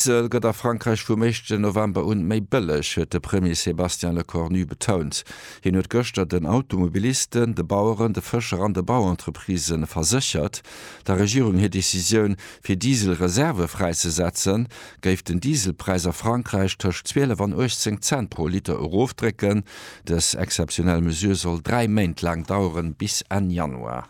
Diesel gëtt a Frankräich vum éischten November un méi bëlleg, huet de Premier Sébastien Lecornu betount. Hien huet gëschter den Automobilisten, de Baueren, de Fëscher an de Bauentreprisë verséchert, der Regierung hir Decisioun, fir Diesel-Reservë fräizesetzen, géif den Dieselpräis a Frankräich tëscht 12 an 18 Cent pro Liter erofdrécken. Dës exzeptionell Mesure soll dräi Méint laang daueren, bis Enn Januar.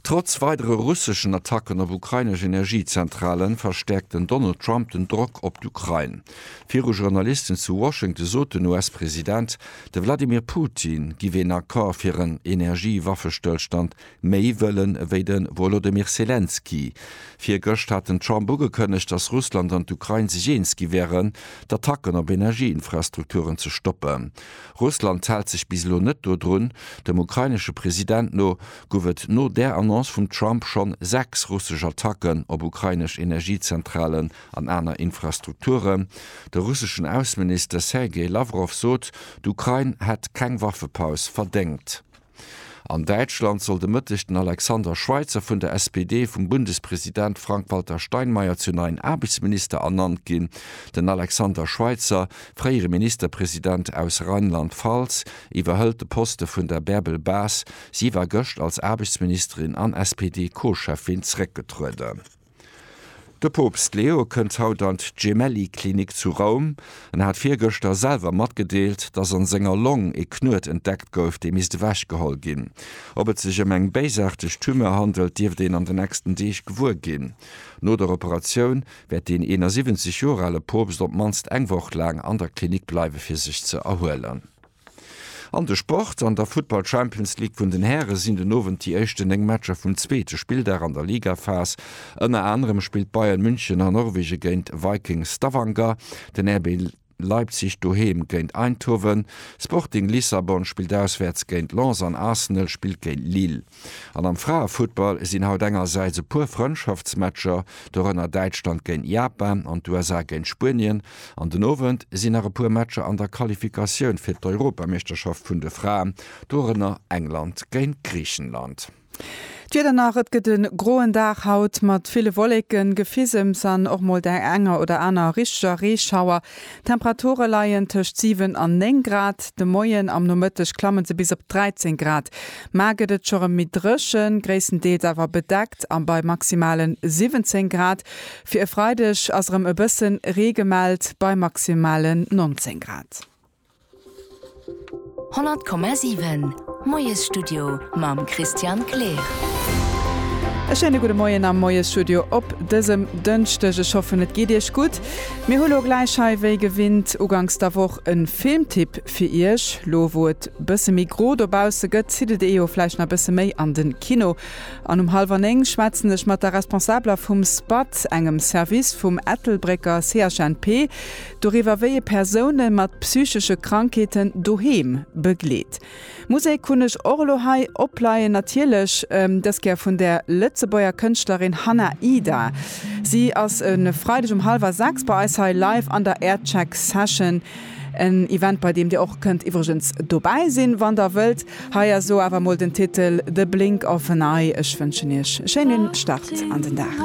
Trotz weidere russeschen Attacken op ukrainesch Energiezentrale verstäerkt den Donald Trump den Drock op d'Ukrain. Viru Journalisten zu Washington sot den US-President, de Wladimir Putin giff een Accord fir en Energiewaffestëllstand méi wëllen ewéi de Wolodymyr Selenskyj. Virgëscht hat den Trump ugekënnegt, datt Russland an d'Ukrain sech eens gi wären, d'Attacken op Energieinfrastrukturen ze stoppen. Russland hält sech bis elo net dodrun. Dem ukrainesche President no gouf et no där Annonce vum Trump schonn sechs russesch Attacken op ukrainesch Energiezentralen an aner Infrastrukturen. De russeschen Ausseminister Sergei Lawrow sot, d'Ukrain hätt keng Waffepaus verdéngt. An Däitschland soll de Mëtteg den Alexander Schweitzer vun der SPD vum Bundespresident Frank-Walter Steinmeier zum neien Aarbechtsminister ernannt ginn. Den Alexander Schweitzer, fréiere Ministerpresident aus Rheinland-Pfalz, iwwerhëlt de Poste vun der Bärbel Bas. Si war gëscht als Aarbechtsministerin an SPD-Co-Cheffin zeréckgetrueden. De Poopst Leo kënnt haut an d'Gemelli-Klinik zu Roum. En hat virgëschter selwer matgedeelt, datt an senger Long ee Knuet entdeckt gouf, dee misst ewechgeholl ginn. Ob et sech ëm eng béisaarteg Tumeur handelt, dierft een an de nächsten Deeg gewuer ginn. No der Operatioun wäert deen 71 Joer ale Poopst op d'mannst eng Woch laang an der Klinik bleiwe fir sech ze erhuelen. An de Sport, An der Futtball Champions League vun den Häre sinn den Owend déi éischten 9 Matcher vum zweete Spilldag an der Ligaphas. Ënner anerem spillt Bayern München a Norwegen géint Viking Stavanger, den RB Leipzig doheem géint Eindhoven, Sporting Lissabon spillt auswäerts géint Lens an Arsenal spillt géint Lille. An am Fraefuttball sinn haut engersäits e puer Frëndschaftsmatcher, dorënner Däitschland géint Japan an d'USA géint Spuenien, an den Owend sinn nach e puer Matcher an der Qualifikatioun fir d'Europameeschterschaft vun de Fraen, dorënner England géint Griichenland. D'Wieder nach, Et gëtt e groen Dag haut mat ville Wolleken, Gefisems an och mol der enger oder aner richteger Reeschauer. D'Temperature leien tëscht 7 an 9 Grad, de Moien am Nomëtteg klamme se bis op 13 Grad. Mar gëtt et scho rem méi dréchen, gréisstendeels awer bedeckt a bei maximale 17 Grad. Fir e Freideg ass erëm e bësse Ree gemellt bei maximale 19 Grad. 100,7 Moiesstudio mam Christian Kleer. E schéine gudde Moien am Moiesstudio op dësem Dënschdeg. Ech hoffen, et geet Iech gutt. Mir hu lo gläich hei, wéi gewinnt uganks der Woch, e Filmtipp fir Iech. Lo wou et bësse méi gro dobausse gëtt, zitt et ee jo vläicht nach bësse méi an de Kino. An um hallwer néng schwätzen ech mat der Responsabeler vum SPAT, engem Service vum Ettelbrécker CHNP. Doriwwer wéi ee Persoune mat psychesche Krankheeten doheem begleet. Musek hunn ech och elo hei opleien, natierlech dës Kéier vun der Lëtzebuerger Kënschtlerin Hanna Ida. Si ass e Freideg um hallwer 6 bei eis hei live an der Aircheck Session. En Event bei deem Dir och kënnt iwwregens dobäi sinn, wann Der wëllt. Hei ass elo awer emol den Titel The Blink of an Eye. Ech wënschen Iech e schéinen Start an den Dag.